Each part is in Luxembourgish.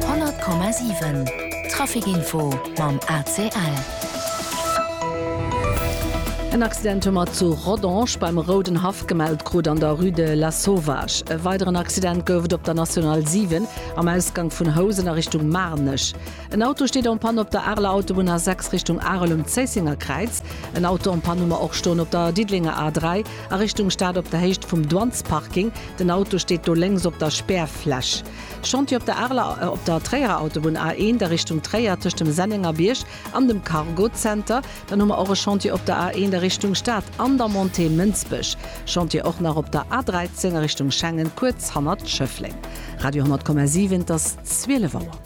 100,7 Traficinfo mam ACL. En Accident hu mer zu Rodange beim Rouden Haff gemellt krut, an der Rue de Lasauvage. E weideren Accident gouf et op der National 7 am Ausgank vun Housen a Richtung Maarnech. En Auto steet en Panne op der Areler Autobunn A6 Richtung Arel um Zéissenger Kräiz. En Auto en Panne hu mer och stoen op der Diddelenger A3 a Richtung Stad op der Héicht vum Douanesparking. Den Auto steet do lénks op der Spärfläch. Chantier op der Arler op der Tréierer Autobunn A1 a Richtung Tréier tëscht dem Sennengerbierg an dem Cargo Center. Dann hu mer och e Chantier op der A1 a Richtung Stad an der Montée Mënsbech. Chantier och nach op der A13 a Richtung Schengen kuerz hannert Schëffleng. Radio 10,7 Et ass 12 Auer.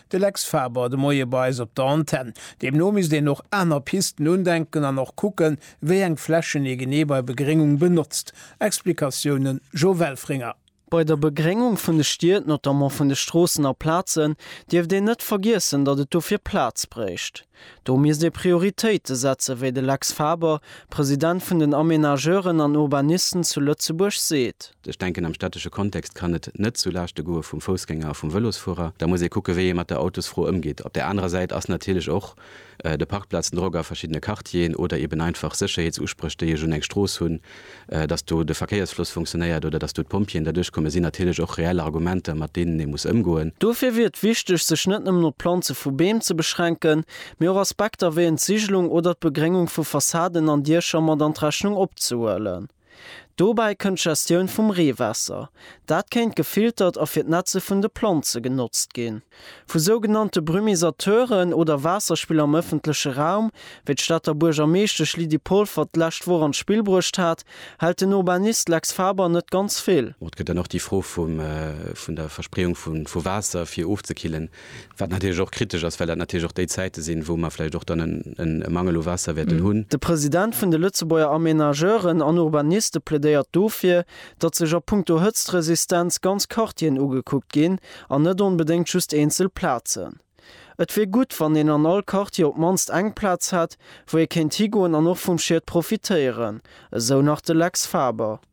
De Lex Faber de Moie bei eis op der Antenn. Deemno misst een och aner Pisten undenken an och kucken, wéi eng Flächen ee genee bei Begréngung benotzt. Explikatiounen, Jo Welfringer. Bei der Begréngung vun de Stied, notamment vun de Stroossen a Plazen, dierft een net vergiessen, datt et dofir Plaz bréicht. Do misst ee Prioritéite setzen, wéi de Lex Faber, President vun den Aménageuren an Urbanisten zu Lëtzebuerg, seet. Ech denken, am städtesche Kontext kann et net zu Laaschte goe vum Foussgänger a vum Vëlosfuerer. Da muss ee kucke wéi ee mat der Autosfro ëmgeet. Op där anerer Säit ass natierlech och de Parkplazendrock a verschiddene Quartieren oder eeben einfach Sécherheetsuspréch, déi ech un eng Strooss hunn, datt do de Verkéiersfloss funktionéiert oder datt do d'Pompjeeën derduerch kommen, sinn natierlech och reell Argumenter, mat deenen ee muss ëmgoen. Dofir wier et wichteg, sech net nëmmen op d'Planze vu Beem ze beschränken, mee och Aspekter wéi Entsigelung oder d'Begréngung vu Fassaden an Diecher mat an d'Rechnung opzehuelen. Dobäi kënnt d'Gestioun vum Reewaasser. Dat kéint gefiltert a fir d'Netze vun de Planze genotzt ginn. Vu sougenannte Brumisateuren oder Waasserspiller am ëffentleche Raum, wéi d'Stater Buergermeeschtesch Lydie Polfer d'lescht Woch an d'Spill bruecht hat, hält den Urbanist Lex Faber net ganz vill. Et gëtt dann och déi Fro vum vun der Verspreeung vu Waasser fir ofzekillen. Wat natierlech och kritesch ass, well dat natierlech och déi Zäite sinn, wou mer vläicht och dann e Mangel u Waasser wäerten hunn. De President vun de Lëtzebuerger Amenageuren an Urbaniste plädéiert dofir, datt sech a punkto Hëtztresistenz ganz Quartieren ugekuckt ginn an net onbedéngt just eenzel Plazen. Et wier gutt, wann een an all Quartier op d'mannst eng Plaz hätt, wou ee kéint higoen an och vum Schied profitéieren, esou nach de Lex Faber.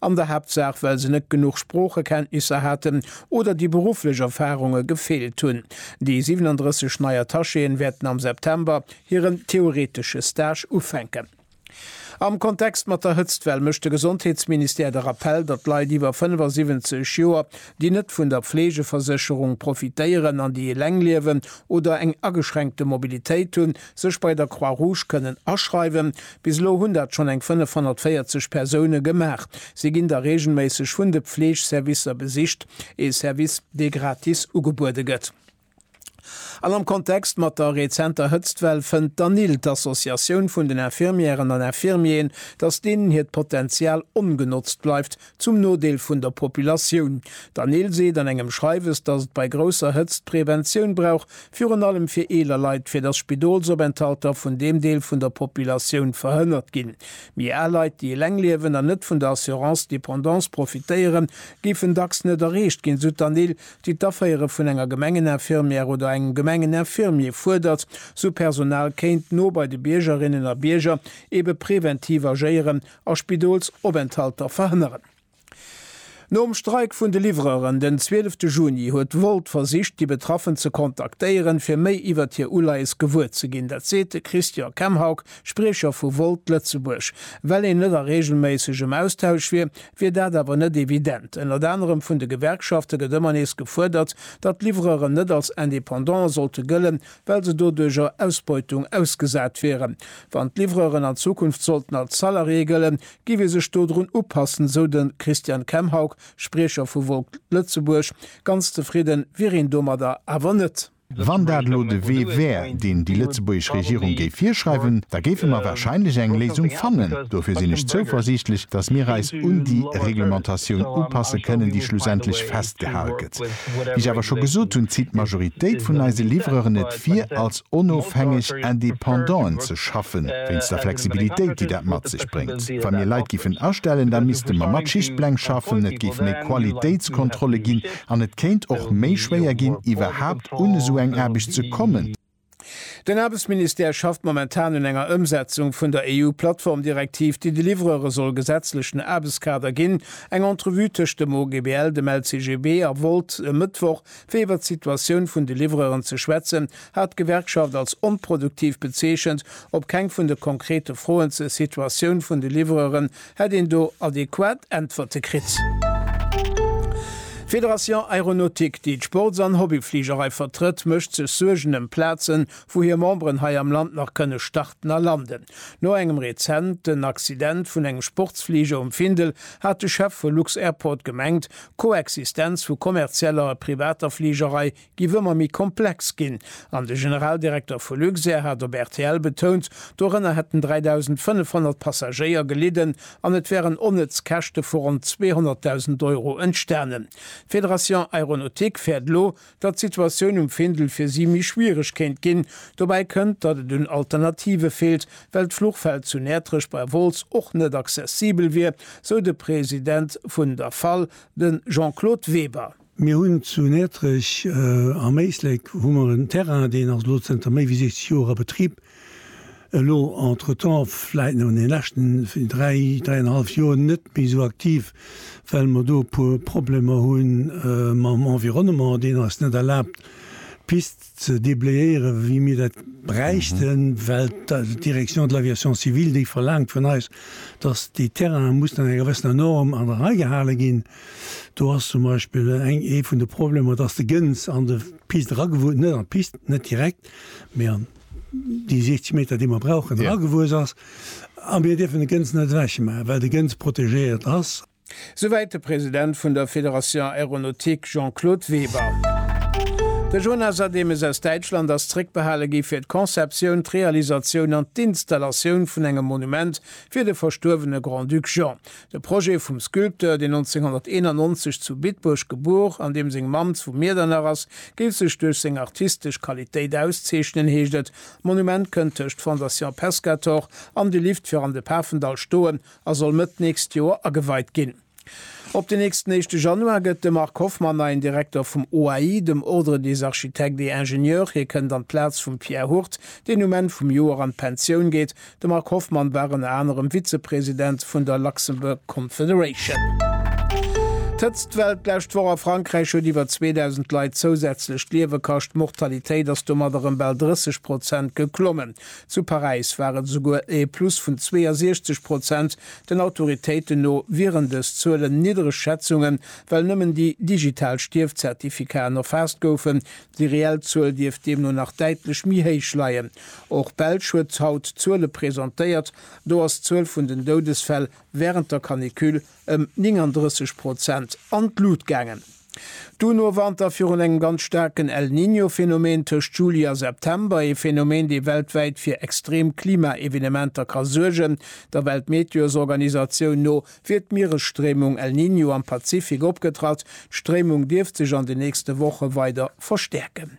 an der Haaptsaach well se net genuch Sproochekenntnisser haten oder déi berufflech Erfarunge gefeelt hunn. Déi 37 nei Attachéen wäerten am September hiren theoretesche Stage ufänken. Am Kontext mat der Hëtztwell mécht de Gesondheetsministère de Rappell, datt Leit iwwer 75 Joer, déi net vun der Fleegeversécherung profitéieren an déi eleng liewen oder eng ageschränkte Mobilitéit hunn, sech bei der Croix Rouge kënnen aschreiwen. Bis elo hunn dat schonn eng 540 Persoune gemaach. Si ginn da reegelméisseg vun de Fleegservicer besicht, ee Service, dee gratis ugebuede gëtt. An am Kontext mat der rezenter Hëtztwell fënnt d'ANIL, d'Associatioun vun den Infirmièren an Infirmieren, datt deenen hiert Potenzial ongenotzt bleift, zum Nodeel vun der Populatioun. D'Anil seet an engem Schreiwes, datt et bei grousser Hëtzt Preventioun brauch, virun allem fir eeler Leit, fir datt Spidolsopenthalter vun deem Deel vun der Populatioun verhënnert ginn. Méi al Leit, déi eleng liewen an net vun der Assurance dépendance profitéieren, géifen dacks net erreecht ginn, sou d'Anil, déi d'Aféiere vun enger Gemengeninfirmière oder engem Gemengeninfirmier fuerdert, sou Personal kéint no bei de Biergerinnen a Bierger eebe preventiv agéieren a Spidolsopenthalter verhënneren. Nom Streik vun de Livreuren den 12 Juni huet Wolt versicht, déi Betraffen ze kontaktéieren, fir méi iwwert hir Uleies gewuer ze ginn. Dat seet de Christian Kemhaug, Spriecher vu Wolt Lëtzebuerg. Well een net a reegelméissegem Austausch wier, wier dat awer net evident. Ënnert anerem vun de Gewerkschafte gëtt ëmmer nees gefuerdert, datt d'Livreuren net als Independante sollte gëllen, well se doduercher Ausbeutung ausgesat wieren. Wann d'Livreuren an Zukunft sollten als Salarié gëllen, giff ee sech dodrun upassen, sou de Christian Kemhaug, Spriecher vu Wolt Lëtzebuerg. Ganz zefridde wier een domadder awer net. Wann dat elo de Wee wär, deen déi lëtzebuergesch Regierung géif virschreiwen, da géife mer warscheinlech eng Léisung fannen. Dofir sinn ech zouversiichtlech, datt mir eis un déi Reglementatioun upasse kënnen, déi schlussendlech festgehal gëtt. Projekt. Wéi ech awer scho gesot hunn, zitt d'Majoritéit vun eise Livreuren et vir, als onofhängeg Indépendant'en ze schaffen, wéinst der Flexibilitéit, déi dat mat sech bréngt. Wa mir Leit giffen astellen, da misste mer mat Schichtpläng schaffen, et géif méi Qualitéitskontrolle ginn an et kéint och méi schwéier ginn, iwwerhaapt un esou eng Aarbecht ze kommen. Den Aarbechtsministère schafft momentan un enger Ëmsetzung vun der EU-Plattformdirektiv, déi de Livreure soll gesetzlechen Aarbechtskader ginn. Eng Entrevue tëscht dem OGBL, dem LCGB a Volt e Mëttwoch, fir iwwert d'Situatioun vun de Livreuren ze schwätzen, hat d'Gewerkschaft als onproduktiv bezeechent. Op keng vun de konkrete Froen zur Situatioun vun de Livreuren Hätt een do adequat Äntwerte kritt? D'Fédération Aéronautique, déi d'Sports an Hobbyfligerei vertrëtt, mécht sech Suergen ëm Plazen, wou hir Memberen hei am Land nach kënne starten a landen. No engem rezenten Accident vun engem Sportsfliger um Findel hat de Chef vu Lux-Airport gemengt, d'Koexistenz vu kommerzieller a privater Fligerei giff ëmmer méi komplex ginn an de Generaldirekter vu Luxair hat op rtl betount, dorënner hätten 3.500 Passagéier gelidden an et wären onnëtz Käschte vu ronn 200.000 Euro entstanen. D'Fédération Aéronautique fäert elo, datt d'Situatioun um Findel fir si méi schwiereg kéint ginn. Dobäi kënnt, datt et un Alternative feelt, well d'Fluchfeld zu Näertrech bei Wolz och net accessibel wier, sou de President vun der fal, de Jean-Claude Weber. Mir hunn zu Näertrech am Éislek hu mer en Terrain, deen ass elo zënter méi wéi 60 Joer a Betrib. Elo entretemps, vläit an de leschten dräi, dräianhallef Joer net méi esou aktiv, well mer do e puer Problemer hu mam Environnement, deen eis net erlaabt d'Pist, ze déblayéieren, wéi mir dat bräichten, well d'Direction de l'aviation civile, déi verlaangt vun eis, dass déi Terrainen mussen enger gewëssener Norm an der Rei gehale ginn. Do ass zum Beispill eng, ee vun de Problemer, dass de Gëns an de Pist eragewuess, net an d'Pist, net direkt, mee an déi 60 Meter, déi mer brauchen, eragewuess ass. A mir dierfen de Gëns net ewechmaachen, well de Gëns protegéiert ass. Souwäit de President vun der Fédération Aéronautique Jean-Claude Weber. De Jonas Ademes aus Däitschland ass zréckbehale gi fir d'Conceptioun, d'Realisatioun an d'Installatioun vun engem Monument fir de verstuerwene Grand-Duc Jean. De Projet vum Sculpteur, deen 1991 zu Bitburg gebuer an deem seng Mamm zu Miedernach ass, géif sech duerch seng artistesch Qualitéit auszeechnen, heescht et. D'Monument kënnt tëscht Fondation Pescator an de Lift fir an de Pafendall stoen. a soll Mëtt d'nächst Joer ageweit ginn. Op den nächsten éischte Januar gëtt de Marc Hoffmann neien Direkter vum OAI, dem Ordre des Architectes et Ingénieurs. Hie kënnt an d'Plaz vum Pierre Hurt, deen um Enn vum Joer an d'Pensioun geet. De Marc Hoffmann war ënner anerem Vizepresident vun der Luxembourg Confederation. D'Hëtzt Well d'lescht Woch a Frankräich huet iwwer 2.000 Leit zousätzlech d'Liewe kascht. D'Mortalitéit ass domat erëm bal 30 Prozent geklommen. Zu Paräis war et esouguer e Plus vun 62 Prozent. Den Autoritéiten no wieren dës Zuelen niddereg Schätzungen, well nëmmen déi digital Stierfzertifikaen erfaasst goufen. Déi reell Zuel dierft deemno nach däitlech méi héich leien. Och d'Belsch huet haut Zuele presentéiert. Do ass d'Zuel vun den Doudesfäll wärend der Canicule ëm 39 Prozent an d'Lut gaangen. D'UN warnt da virun engem ganz staarken El Niño-Phänomen tëscht Juli a September, ee Phänomen, dee weltwäit fir extrem Klima-Evenementer ka suergen. Der Weltmeteosorganisatioun no wier d'Mieresstréimung El Niño am Pazifik opgetratt. D'Stréimung dierft sech an den nächste Woche weider verstäerken.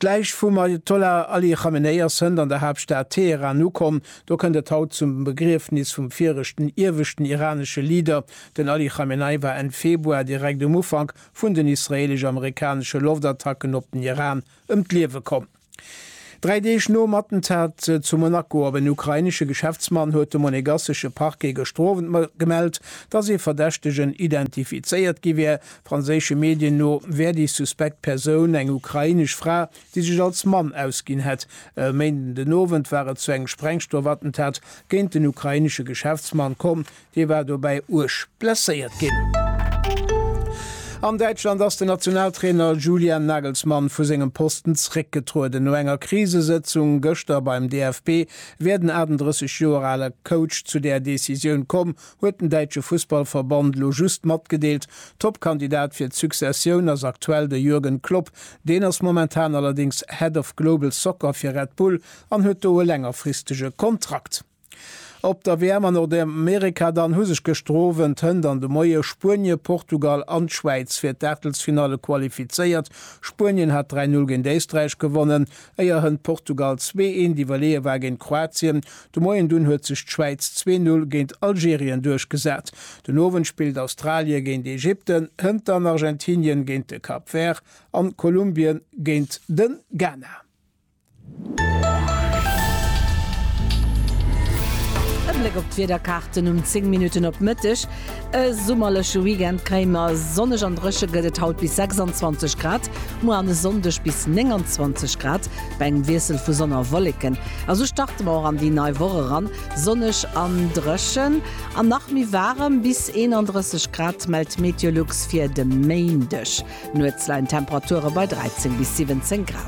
D'Läich vum Ajatollah Ali Chamenei ass hënt an der Haaptstad Teheran ukomm. Do kënnt et haut zum Begriefnis vum viregten ieweschten iranesche Leader. Den Ali Chamenei war Enn Februar, direkt um Ufank vun den israeelesch-amerikanesche Loftattacken op den Iran, ëm d'Liewe komm. Dräi Deeg nom Attentat zu Monaco op en ukrainesche Geschäftsmann huet de monegassesche Parquet gëschter Owend gemellt, dass ee Verdächtegen identifizéiert gi wär, Franséische Medien no wär déi suspekt Persoun eng ukrainesch Fra, déi sech als Mann ausginn hätt. E Méinden den Owend war et zu engem Sprengstoff-Attentat géint en ukrainesche Geschäftsmann komm. Dee war dobäi uerg blesséiert ginn. An Däitschland ass den Nationaltrainer Julian Nagelsmann vu sengem Posten zréckgetrueden. No enger Krisesëtzung gëschter beim DFB wär den 38 Joer ale Coach zu där Decisioun komm. huet den däitsche Fussballverband elo just matgedeelt. Top-Kandidat fir d'Successioun ass aktuell de Jürgen Klopp. Deen ass momentan allerdéngs Head of Global Soccer fir Red Bull an huet do e längerfristege Kontrakt. Op der WM a Nordamerika dann hu sech gëschter Owend, hënt an de Moie Spuenie, Portugal an d'Schwäiz fir d'Aachtelsfinalle qualifizéiert. Spuenien hat 3, 0 géint Éisträich gewonnen. Éier hënt Portugal zwee eent iwwerleeë war géint Kroatien de Moien, dunn huet sech d'Schwäiz zwee Null géint Algerien duerchgesat. Den Owend spillt Australie géint Ägypten, hënt dann Argentinien géint de Cap Vert an Kolumbien géint de Ghana. E Bléck op d'Wiederkaarten um 10 Minutten op Mëtteg. E summerleche Weekend kréie mer, sonneg an dréche gëtt et haut bis 26 Grad, muer an e Sonndeg bis 29 Grad bei engem Wiessel vu Sonn a Wolleken. A sou starte mer och an déi nei Woch eran, sonneg an dréchen an nach méi waarem, bis 31 Grad mellt Meteolux fir de Méindeg. Nuets leien d'Temperature bei 13 bis 17 Grad.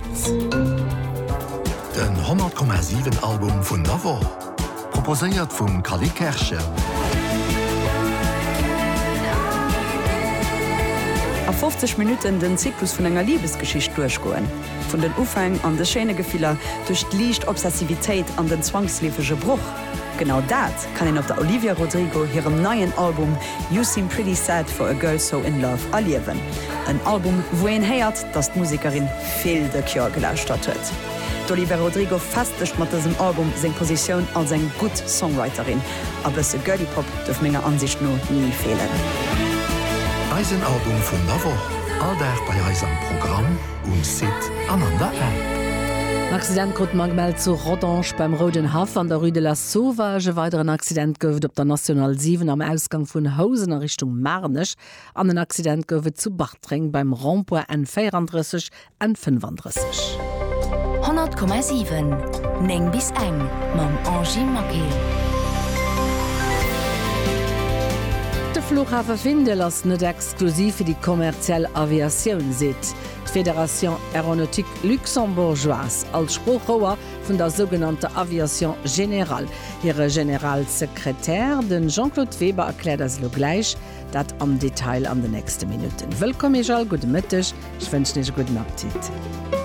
Den 100,7 Album vun der Woch, proposéiert vum Cally Kerschen. A 50 Minutten den Zyklus vun enger Libesgeschicht duerchgoen. Vun den Ufäng an de schéine Gefiller, duerch d'liicht Obsessivitéit an den zwangsleefege Broch. Genau dat kann een op der Olivia Rodrigo hirem neien Album You Seem Pretty Sad For A Girl So In Love erliewen. En Album, wou een héiert, dass d'Musekerin vill The Cure gelauschtert huet. D'Olivia Rodrigo festegt mat dësem Album seng Positioun als eng gutt Songwriterin. A bësse Girly Pop duerf menger Ansicht no ni feelen. Eisen Album vun der Woch, all Dag bei eis am Programm, um Site an an der App. En Accident krut d'Magmel zu Rodange beim Rouden Haff an der Rue de la. Sauvage, E weideren Accident gouf et op der National 7 am Ausgang vun Housen a Richtung Maarnech an en Accident gouf et zu Bartreng beim Rond-point N 34, N 35. 100,7, 9 bis eng mam Angie Maquet. De Flughafe Findel ass net exklusiv fir déi kommerziell Aviatioun, seet d'Fédération Aéronautique Luxembourgeoise. Als Sproochrouer vun der sougenannter Aviation générale. Hire Generalsekretär, de Jean-Claude Weber, erkläert eis elo gläich dat am Detail an den nächste Minutten. Wëllkomm Iech all, gudde Mëtteg, ech wënschen Iech e gudden Appetit.